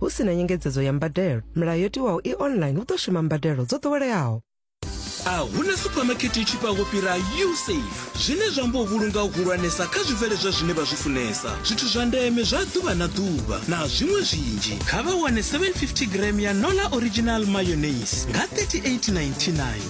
hu si na nyengedzedzo ya mbadelo milayo yo tiwaho i online hu ḓo shuma mbadelo dzo ḓoweleaho a huna suphamakete i tshifhaho fhira usafe zwine zwa amba u vhulunga u hulwanesa kha zwibveledzwa zwine vha zwi funesa zwithu zwa ndeme zwa ḓuvha na ḓuvha na zwiṅwe zwinzhi kha vha wane 750 gram ya nola original mayonnaise nga 3899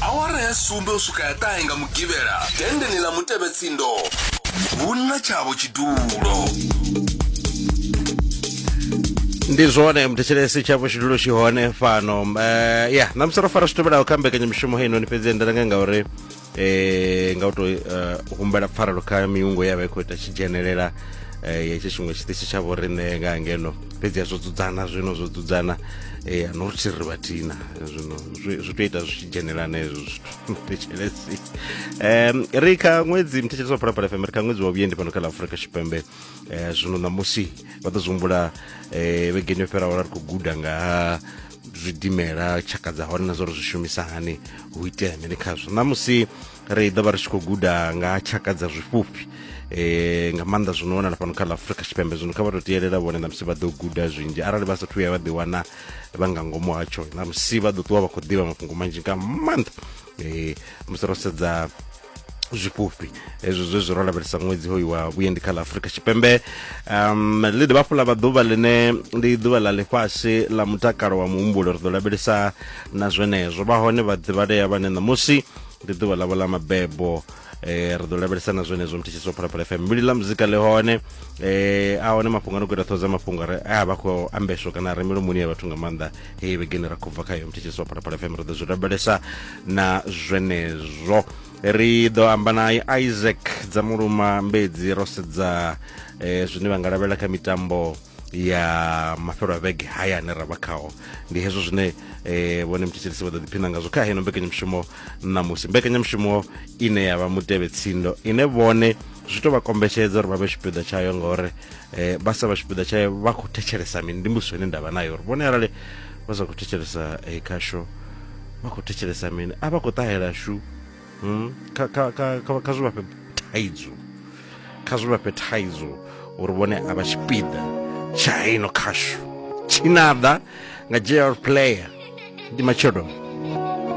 awara ya sumbe u swika ya ṱahe nga mugivhela dendeneni ḽa mutevhetsindo hu na tshavho tshidulo ndi zwone muthetshelesi tsha vhushidulo tshi hone fhano um ya ṋamusi ro fara zwi tevhelaho kha mbekanyamushumo heinoni fhedzi endelanga ngauri eh nga u tou eh, humbela pfarelo kha miungo ya vha i khou ita tshi dzhenelela eh, ya itsho tshiṅwe tshiṱitshi tsha vhoriṋe nga ngeno fhedzi ya zwo dzudzana zwino zwo dzudzana eh, no ri thiri vhathina zwino zwi zwi tou ita zwi tshi dzhenelana hezwo zwithu thetshelesi um ri kha ṅwedzi mthetshelesi wa phalaphala fm ri kha ṅwedzi wa vhuendi fhano kha ḽa afurika tshipembe eh, zwino ṋamusi vha ḓo zwi humbula eh, vhegeni yo fhiraho ra ri khou guda nga ha zwidimela tshaka dza hone na zwa uri zwi shumisa hani hu itea mini khazwo ṋamusi ri ḓo vha ri tshi khou guda nga ha tshaka dza zwifhufhi um nga maanḓa zwi no wanala fhano kha ḽa afrika tshipembe zwino kha vha to tielela vhone ṋamusi vha ḓo guda zwinzhi arali vha sathu ya vha ḓi wana vha nga ngomu hatsho ṋamusi vha ḓo ṱuwa vha khou ḓivha mafhungo manzhi nga maanḓa um musi ro sedza zwifhufhi hezwo zwe zwi ro lavhelesa ṅwedzi hoyu wa vhuendi kha ḽa afurika tshipembe um ḽi dovha hafhu ḽa vha ḓuvha ḽine ndi ḓuvha ḽa ḽifhasi ḽa mutakalo wa muhumbulo ri ḓo lavhelesa na zwenezwo vha hone vhaḓivhalea vhane ṋamusi ndi ḓuvha ḽavho ḽa mabebo eh ri ḓo lavhelesa na zwenezwo mthetshiso phalaphala fm mbili ḽa muzika ḽi hone eh a hone mafhungo a no khou ita ṱhoho dza mafhungo a re a vha khou ambeswa kana a re milomoni ya vhathu nga maanḓa hei vhegeni ra khou bva khayo mthetshelesi wa phalaphala fm ri ḓo zwi rabelesa na zwenezwo ri ḓo amba na isaac dza muluma mbedzi ro sedza eh, zwine vha nga lavhelela kha mitambo ya mafhelo a vhege haya ane ra vha khao ndi hezwo zwine eh, vhone mthetshelesi vha ḓo ḓiphina ngazwo kha heno mbekanyamushumo ṋamusi mbekanyamushumo ine ya vha mutevhe tsindo ine vhone zwi to vha kombetshedza uri vha vhe tshipiḓa tshayo ngauri eh, vha sa vha tshipiḓa tshae vha khou thetshelesa mini ndi mbudziso ine ndavha nayo uri vhone arali vha sa khou thetshelesa eh, khasho vha khou thetshelesa mini a vha khou ṱahela shu hmm? kha, kha, kha, kha, kha zwi vha fhe thaidzo kha zwi vha fhe thaidzo uri vhone a vha tshipiḓa tsha heino khasho tshinaḓa nga jr player ndi matshelo